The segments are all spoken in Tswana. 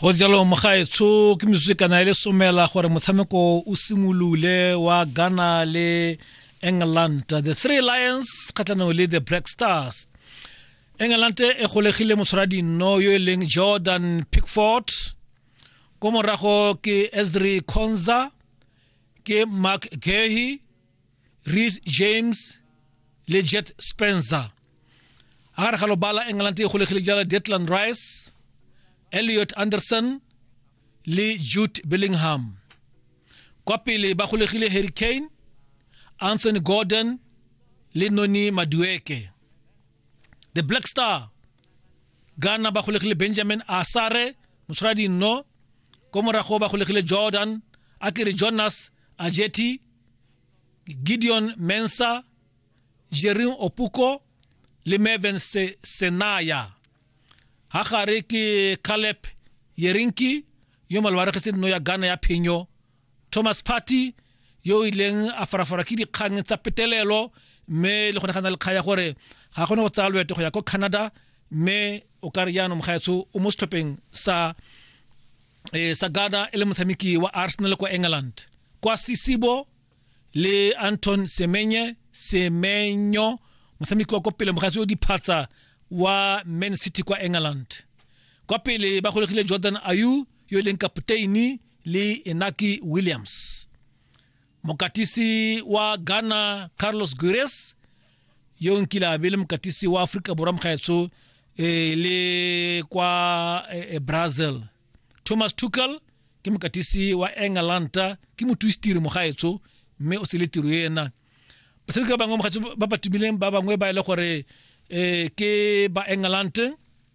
go jalo mogaetsho ke metsotso kana e le somela gore motshameko o simolole wa ghana le england the three lions kgatlhanong le the black stars england e golegile motshwaradinno yo e leng jordan pickford ko morago ke esdri conza ke mark gehi Reece James le Jet Spencer a gare ga lobala England e golegile jala Declan Rice Elliot Anderson le Jude Bellingham kwa pele ba golegile Harry Kane Anthony Gordon le Noni Madueke the Black Star Ghana ba golegile Benjamin Asare motshwaradi nno ko morago ba golegile Jordan a kere Jonas Ajeti Gideon Mensah, Jerin Opuko le Mervin Se Senaya. Ha gare ke Caleb Yerinki yo malwaregetseng no ya Ghana ya phenyo. Thomas Party yo o ileng a farafara ke dikgang tsa petelelo mme le gone ga na le kgaya gore ga kgone go tsaya loeto go ya ko Canada mme o ka re jaanong gaetsho o mo setlhopheng sa e eh, sagada e le motshameki wa arsenal kwa england kwa sisibo le anton semenye semenyo motshameki wa kwa pele mogatsi o diphatsa wa man city kwa england kwa pele ba golegile jordan ayu yo e leng kapteini le enaki williams mokatisi wa ghana carlos gures yo nkile a be le mokatisi wa aforika borwa mokgaetsho eh, le kwa eh, eh, brazil thomas tucal ke mokatisi wa engalanta ke mothusetiri mogaetsho mme o sele tiro ena basebetsi ba bangwe mogaetsho ba ba tumileng ba bangwe ba e le gore eh, ke ba engalante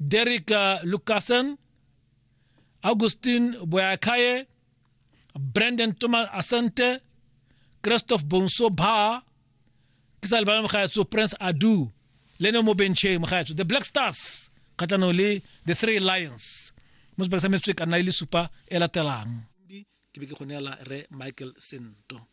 Derrick Lucassen, Augustin Boyakaye, Brandon Thomas Asante, Christophe Bonso Ba, ke sa lebala mogaetso Prince Adu, le ne mo bencheng mogaetso The Black Stars kgatlhanong le The Three Lions mo sebaka sa metswe ka nna e le supa e latelang ke be ke go neela re Michael Sento.